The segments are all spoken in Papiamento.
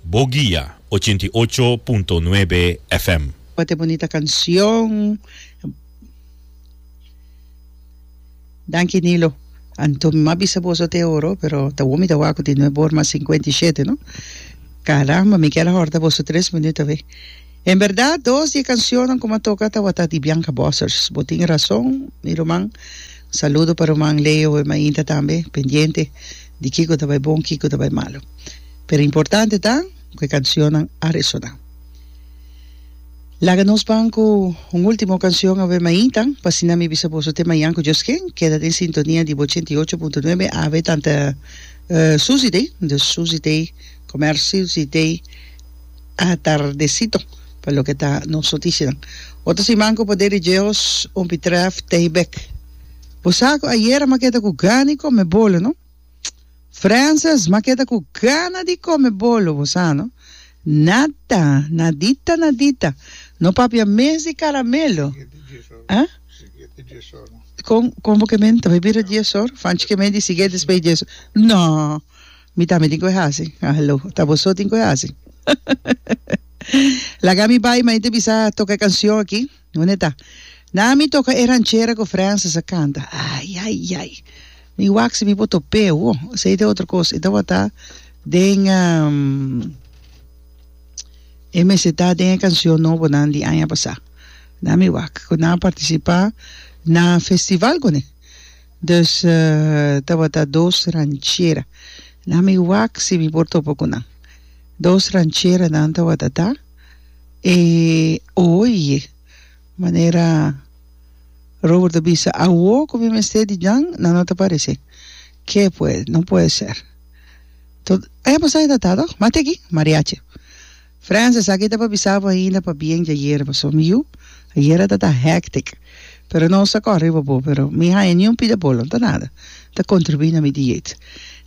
Bo guia ochenta i ocho punto nuebe FM. Wat e bonita kancion. Danki Nilo. Anto mi mas bisa boso te oro, pero ta bon mi ta wak di no e bor mas sinkuenta i shete no. Caramba, mi kier a horta boso tres minut awe. En berdad dos di e kancionnan ku mi a toka tawata di Bianca Bossers. Bo tin rason mi ruman. Un saludo pa ruman Leo e mainta tambe, pendiente. di kiko ta bai bon kiko ta bai malu pero importante ta ku e kanshonnan a resoná laga nos ban ku un ultimo kanshon awe mainta pa asina mi bisa boso te mañan ku Dios ken keda den sintonia di bo ochenta i ocho punto nuebe awe tanta Susi Day dus Susi Day komer Susi Day atardesito pa loke ta nos notishanan otro siman ku poder di Dios un bitrèf tei bèk. Bo sa cu ayera m'a keda cu gana di come bolo, no? Frances, m'a keda cu gana di come bolo, bo sa, no? Nada, nadita, nadita. No papia mes di caramelo. Ah? Con, con bo ke men? Ta bay bira dies or? Fanchi ke men di sigue despues di dies or? No! Mi tambe tin cu a haci. Ah, hello. Ta bo so tin cu a haci. Laga mi bay, ma e ta bisa toca e cancion aki. Nunde ta? Na ami toca e ranchera cu Francis a canta. Ay, ay, ay. Mi wak si mi por top'e awo. Esey ta e otro cos. E tabata den e meseta den e cancion nobonan di aña pasa. Na mi wak cu nan a participa na festival cune. Dus tabata dos ranchera. Na mi wak si mi por topa cu nan. Dos rancheranan tabata ta. E oye manera Robert a bisa, awo cu mi mester di djan, nan no ta parece. Ke pues? No puede ser. To, aya pasa e tata toh, mate aki, Mariachi. Frans, esaki ta pa bisa bo ainda pa bien dje ayer paso. Mi yu, ayer a tata hectic, pero nos ta kor riba bo, pero mi haya ni un pida bolo, no ta nada, ta contribui na mi dieet.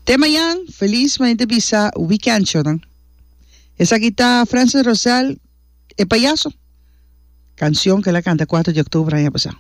Te mayan, feliz, manera ta bisa, weekend cho nan. Esaki ta Francis Rosell e payaso. Cancion cu el a canta cuater di octuber aña pasá.